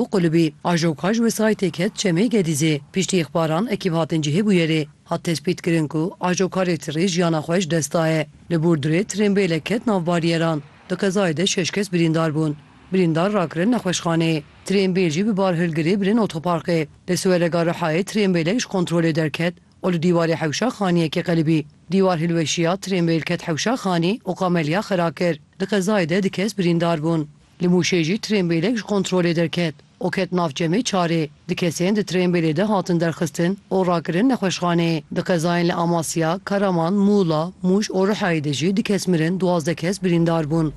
û qulibî. Ajoka ji wesayîtê ket Çemê Gedîzê. Piştî îxbaran ekîb hatin cihê bûyerê. Hat tespîtkirin ku ajoka rêtirê jiyana xwe ji dest daye. Li Burdurê trênbêlek ket nav baryeran. Di qezayê de şeş kes birîndar bûn. Birîndar rakirin nexweşxaneyê. Trênbêl jî bi barhilgirê birin otoparkê. Li Siwerega Rihayê trênbêlek ji kontrolê derket û li dîwarê hewşa xaniyekê qelibî. Dîwar hilweşiya, trênbêl ket hewşa xanî û qameliya xera kir. Di qezayê de du kes birîndar bûn. Li Mûşê jî trênbêlek ji kontrolê derket û ket nav çemê Çarê. Du kesên di trênbêlê de hatin derxistin û rakirin nexweşxanê. Di qezayên li Amasya, Karaman, Mûla, Mûş û Rihayê de jî du kes mirin, duwazdeh kes birîndar bûn.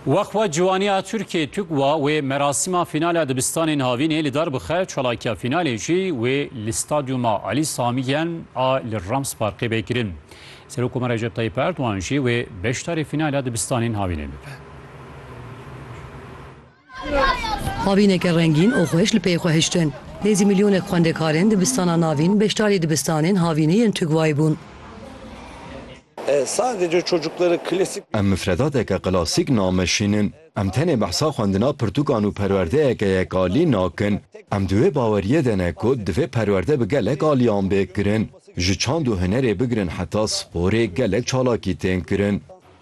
Weqfa Ciwaniya Tirkiyê TUGWA wê merasîma fînala dibistanên havînê li dar bixe, çalakiya fînalê jî wê li Stadyuma Alî Samî Yen a li Rams Parkê bê kirin. Serokkomar Recep Tayyîp Erdogan jî wê beşdarî fînala dibistanên havînê bibe. Avîneke rengîn û xweş li pey xwe hiştin. Nêzî milyonek xwendekarên dibistana navîn beşdarî dibistanên havînê yên Tugwayê bûn. Em mifredateke klasîk nameşînin. Em tenê behsa xwendina pirtûkan û perwerdeyeke yekalî nakin. Em di wê baweriyê de ne ku divê perwerde bi gelek aliyan bê kirin. Ji çand û hunerê bigirin heta sporê gelek çalakî tên kirin.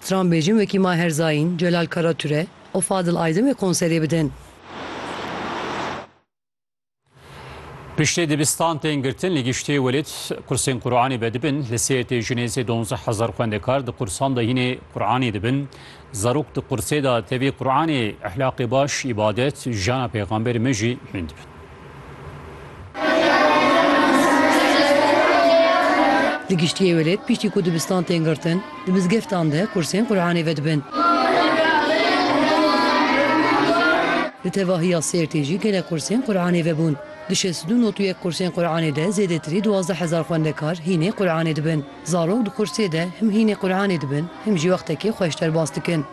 Stran bêjin wekî Maher Zaîn, Celal Karature û Fadil Aydemê konserê bidin. Piştê dibistan tên girtin li giştê welêt qursên Quranê vedibin. Li Sêrtê ji nêzê donzdeh hezar xwendekar di qursan de hînê Quranê dibin. Zarok di qursê de tevî Quranê, ehlaqê baş, îbadet, jiyana pêxamberê me jî hîn dibin. Li giştî êwelêt piştî ku dibistan tên girtin, di mizgeftan de kursên Quranê vedibin. Li tevahiya Sêrtê jî gelek kursên Quranê vebûn. Di şêst û du not û yek kursên Quranê de zêdetirî duwazdeh hezar xwendekar hînê Quranê dibin. Zarok di kursê de him hînê Quranê dibin him jî wextekê xweş derbas dikin.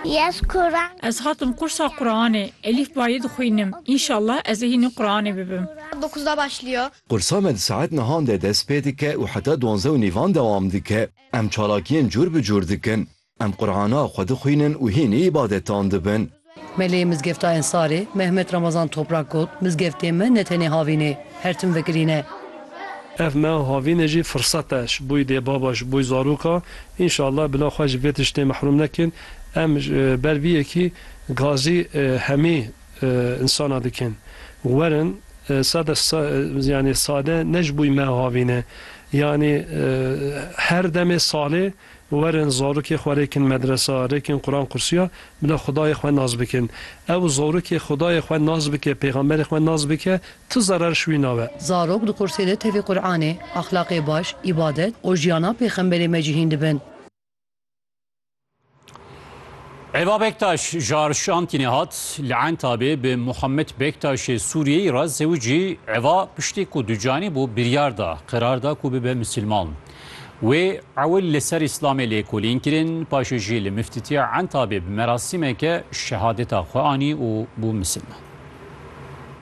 Yes Quran. Ez hatim qursa Quranê. Elîf bayê dixwînim. Înşallah ez ê hînî Quranê bibim. Dokuz da başlıyor. Qursa me di saet nihan de dest pê dike û heta duanze û nîvan dewam dike. Em çalakiyên cûr bi cûr dikin. Em Qurana xwe dixwînin û hînî îbadetan dibin. Melê Mizgefta Ensarê Mehmet Ramazan Toprak got, Mizgeftê me ne tenê havîn ê, her tim vekirîne. Ev me havînê jî firsete ji bo îdê baba, ji bo zaroka Înşallah bila xwe ji vê tiştê mehrûm nekin. Em ber vî yekî gazî hemî însanan dikin. Werin sade yanî sade ne ji bûyî me avîne. Yanî her demê salê werin zarokê xwe rêkin medresa, rêkin Quran qursiya bila xudayê xwe nas bikin. Ew zarokê xudayê xwe nas bike, pêxamberê xwe nas bike Tu zarar şwîna we. Zarok di qursê de tevî Quranê, exlaqê baş, îbadet û jiyana pêxemberê me cihîn dibin. Eva Bektaş ji Arşantînê hat, li Entabê bi Muhammed Bektaşê Sûriyeyî re zewicî, Eva piştî ku ducanî bû biryar da, qerar da ku bibe misilman. Wê ewil li ser Îslamê lêkolîn kirin, paşê jî li Miftitiya Entabê bi merasîmeke şehadeta xwe anî û bû misilman.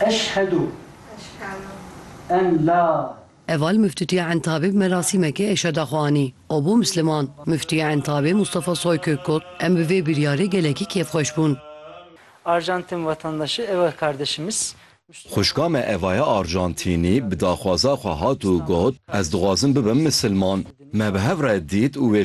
Eşhedû en la. Heval Muftitiya Entabê bi merasîmekê eşheda xwe anî û bû Misliman. Muftiya Entabê Mustafa Soykök got, Em bi vê biryarê gelekî kêfxweş bûn. Arjantin vatandaşı Eva kardeşimiz. Xwişka me Evaya Arjantînî bi daxwaza xwe hat û got, Ez dixwazim bibim Misilman. Me bi hev re dît û wê